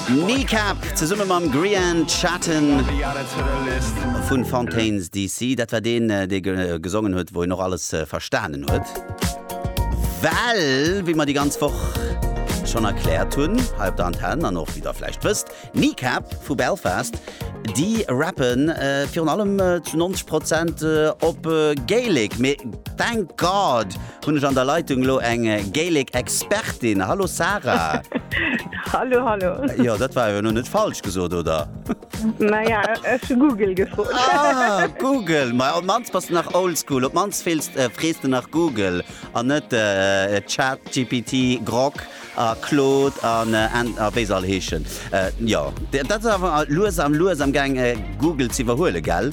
Kneecap zesumme mam Grian Chatten vu Fontaines DC. Dat war deen, dee gesongen huet, wou een och alles verstanen huet. Well, wéi mer déi ganz Woch schonn erkläert hunn hei op der Antenn an och wéi Der vläicht wësst, Kneecap vu Belfast, déi rappe virun allem zu 90 Prozent op Gaelic. Mee thank God! Hunn ech an der Leitung elo eng Gaelic Expertin. Hallo Sarah. Hallo, hallo. Jo, dat war jo elo net falsch gesot, oder? Naja, ech hu Google gefrot. Ah, Google. Ma op mannst bass de nach oldschool. Op mannst feelst, äh, frees de nach Google an net äh, ChatGPT, Grok a Claude an äh, an- a wéi se all heeschen. Äh, jo, dat ass awer lues am lues am gaang, äh, Google z'iwwerhuelen, gell?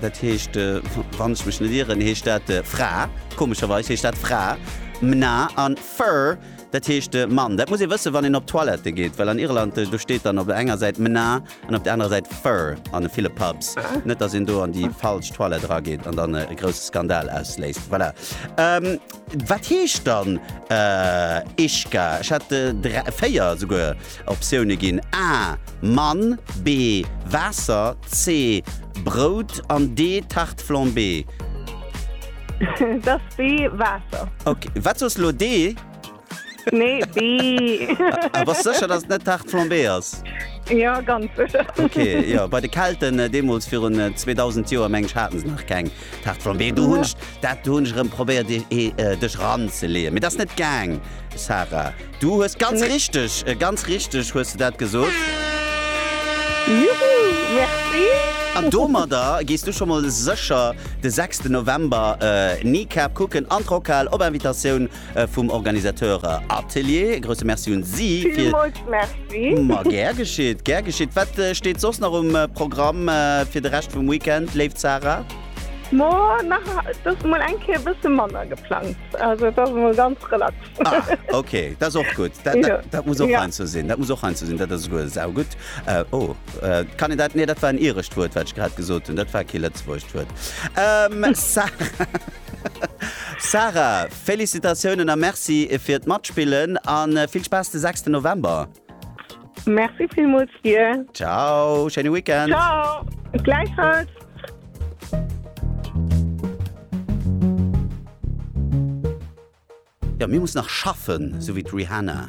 Dat heescht, wann ech mech net ieren, heescht dat Fra. Komescherweis heescht dat Fra, mna, a fur, dat heescht Mann. Dat muss ee wëssen, wann een op d'Toilette geet, well an Irland, do steet dann op der enger Säit mna an op der anerer Säit fur an ville Pubs. Net, dass een do an déi falsch Toilette erageet an dann e grousse Skandal ausléist. Voilà. Wat heescht dann Ishka? Ech hat dräi, véier esouguer Optioune ginn, A, Mann, B, Waasser, C, Brout an D, Tarte flambée. Et ass B, Waasser. Ok, wat soss elo? D? Nee, B. A bass sécher, datt et net Tarte flambée ass? Jo, ganz sécher. Ok, jo, bei de Kelten deemools virun 2000 Joer, meng ech, hate se nach keng. D'Haart vum Wee, do hunn ech, dat hunn ech erëm probéiert dech eranzeleeën, mee dat ass net gaang, Sarah. Du hues ganz richteg, ganz richteg hues de dat gesot. Juhu, merci! An domadder gees du scho mol sécher de sechsten November Kneecap kucken an d'Rockhal op Invitatioun vum Organisateur Atelier. E grousse Merci un si fir. Villmools Merci. Ma gär geschitt, gär geschitt. Wat steet soss nach um Programm fir de Rescht vum Weekend, léif Zara? Ma nach et ass emol eng Kéier e bësse manner geplangt. Also et ass emol ganz relax. Ah, ok, dat ass och gutt. Dat, dat, dat muss och heiansdo sinn. Dat muss och heiansdo sinn. Dat ass esouguer saugutt. Oh, kann een dat? Nee, dat war en irescht Wuert, wat ech grad gesot hunn. Dat war kee lëtzebuergescht Wuert. Sarah. Sarah, Félicitatiounen a Merci fir d'Matspillen a vill Spaass de sechsten November! Merci villmools dir! Ciao, schéine Weekend! Ciao, gläichfalls! Jo, mir mussen nach schaffen, sou wéi d'Rihanna.